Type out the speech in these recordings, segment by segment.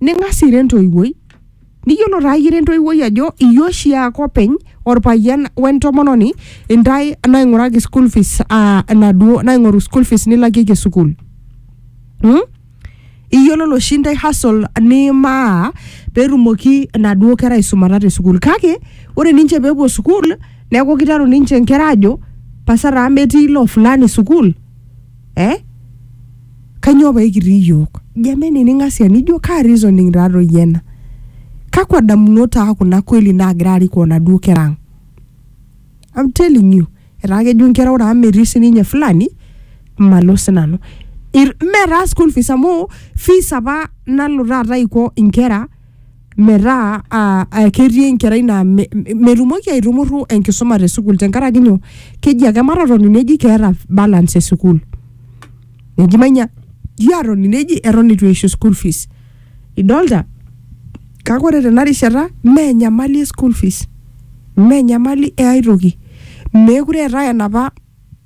ning'as ira entoiwuoi niyiolo taa ira entoiwuoi ajo iyie oshi ake openy orpayian wentomononi intae naing'uraki school fees uh, enaduo naing'oru school fees nilakieki sukuul hmm? iyiololo oshi intae hustle nimaa petumoki enaduo kera aisumata te sukuul kake ore ninche pepuo sukuul neeku kiteru ninche inkera ajo pasa taa metii ilo fulani sukuul eh? Kanyoo pee kitii iyiook? Jameni ning'asia nijo kaa reasoning taa toi ena? Kakwa damunot taa kuna kweli naagira arikoo naduo kera ang? I'm telling you etaa kejo inkera ore amu metii sininye fulani malo sinanu. Mme taa school fees amu fees apa nalo taata aiko inkera metaa ah, ah, ketii enkerai naa me- me- metumoki aitumurru enkisuma te sukuul tenkaraki nyoo keji ake matotoni neji keeta balance e sukuul neji manya ji atoni neji eton eitu eishu school fees idolta kake ore tena rishata mee enyamali e school fees mee enyamali e ae toki meekure eetae enapa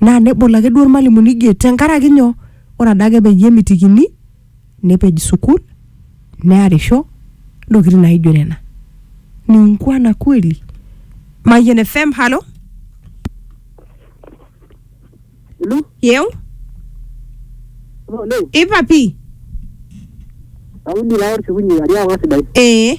naa nebol ake duo irmalimuni gate tenkaraki nyoo ore adake peyie emitikini nepej sukul nearisho ntokitin naijo nena ni ungwana kweli Mayian FM halo Hello? yeu Hello? ipapi Kaudi naa orkikunyi ajo ang'as sidai. ee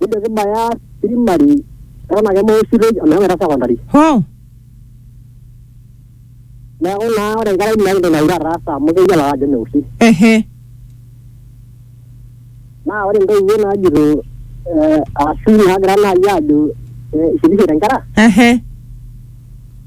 Nijo kibaya primary eton ake mausitoi omeshomoita secondary. Hoo. Neeku naa ore enkerai meeta entoki naure ataasa amu keyiolo ake ajo meoshi. Ehe. Naa ore intoiwuo naajito eh ashu naagira naai aajo eh isirishete inkera Ehe.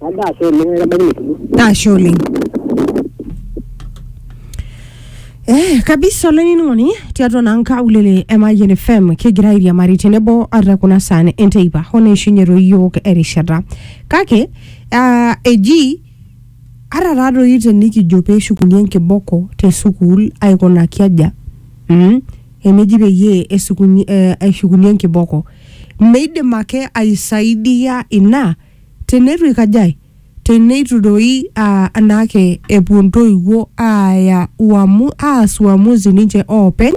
Ajo ashe oleng aitabaiki etulo. Ashe oleng. Eh, kabisa olainining'oni tiatua naa nkaulele e Mayian FM kigira airiamari tenebo ata kuna saan enteipa hoo neishunye toi iyiook erishata kake ah, eji ata taatoi tenikijo peeshukuni enkiboko te sukuul aikunaki aja mm, eneji peyie esukuni, eh, eshukuni enkiboko Meidim ake aisaidia ina teneitu eikajae? Teneitu doi aa anaake epuo ntoiwuo aaya uamu, aas uamuzi ninche oopeny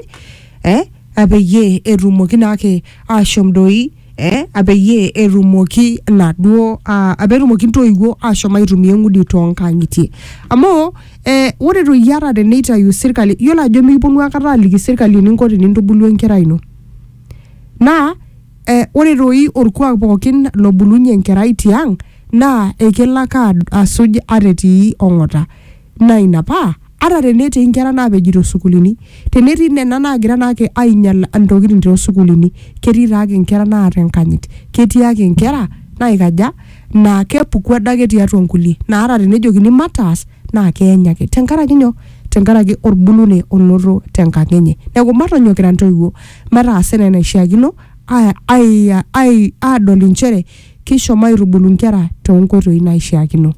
eh apeyie etumoki naake ashom doi eh apeyie etumoki naduo aa petumoki ntoiwuo ashom aitumia eng'udi toonkang'itie. Amu eh ore doi ata teneitayu sirkali, iyiolo ajo mikiponu aikata aliki sirkali eninko tenintubulu enkerai ino. Naa eh, ore doi olkuak pookin lobulunye enkerai tiang naa ekelo ake ad- asuj ata etii ong'ota. Naa ina paa ata tenetii nkera naapeji too sukuulini, tenetii nena naagira naake ainyal ntokitin too sukuulini, ketii taake nkera naata enkanyit. Ketii ake nkera naikaja, naa kepuku adake tiatua nkulie. Naa ata tenejokini mataas naa keeny ake. Tenkaraki nyoo? Tenkaraki olbulunei onoto tenkang enye. Neaku matonyok kira ntoiwuo. metaasa enaa enaishiakino aadol inchere keishomo aitubulu inkera toonkoitoi naaishiakino.